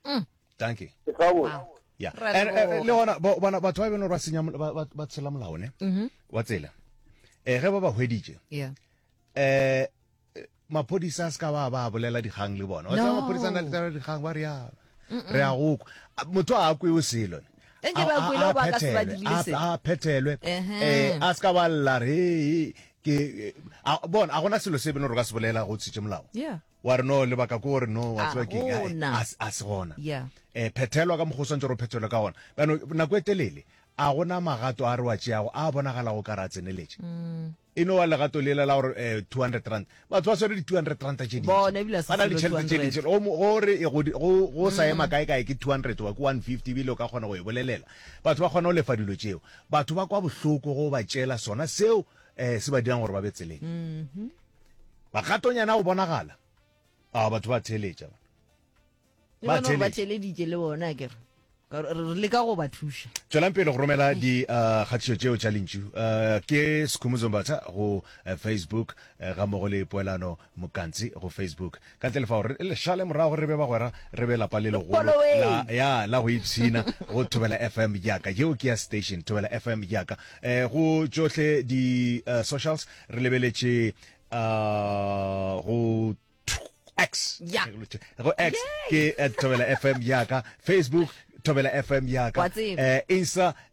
mm. thank you wow. yeah. and, uh, le gona bona batho ba e beno ba senya ba tshela molao ne mm-hmm. wa tsela eh ge ba ba hweditše yeah. eh maphodisa a se ka ba ba bolela dikgang le bona wa tsaya maphodisa na le dikgang ba re ya re a go motho a kwe o selo ne a phethelwe um a se ka ba lla re ke bona a gona selo se beno re ka se bolela go tshitše molao wa re no lebaka ko gore no wa tseba keng a se gona um phethelwa ka mokgwa o swantse re o phethelwe ka gona bano nako e telele a gona magato a re wa tšeago a bonagalago ka re a tseneletše mm. e no wa legato lela la gore um eh, 200 rand batho ba swere di-two hundred ranta tše dintšibana le ditšhelete tše dintši gore go sa ema mm. kae kae ke two hundred wa ke one fifty ebile o ka kgona go e bolelela batho ba kgona go lefa dilo tšeo batho ba kwa bohloko go ba tšela sona seo um se ba dirang gore ba be tseleng mm-hmm. Magatonyana o bonagala. A batho ba theletša. Ba theletša. Ba theleditše le bona a kere. Re le ka go ba thuša. Tswelang pele go romela di uh, kgatišo tšeo tša lentšu. Uh, ke Sekhumuzombatha go uh, Facebook ga mogo le poelano mokantsi go Facebook. Ka ntle le fao, re le šale morago re be bagwera, re be lapa le legolo la, ya, la go ipshina go Thobela FM ya ka. Yeo ke ya station, Thobela FM ya ka. Eh, go tšohle di uh, socials, re lebeletše uh, go X. Yeah. Go X ke at Thobela FM ya ka, Facebook Thobela FM ya ka, uh, Insta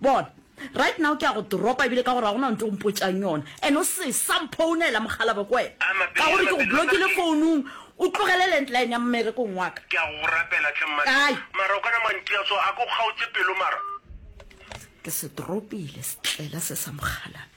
Bona, right now ke a go dropa, ebile ka gore ga go na ntho o mpotšang yona, and o se sa mphounela, mokgalabje, ke wena, A mapelo ka gore ya ke go mapelo a blokile madi. founung, o tlogele landline ya mmerekong wa ka. Ke a go rapela tlhe mma. Kae? Mara o kana mantia so a ko kgaotse pelo mara. Ke se dropile setlela se sa mokgalabje.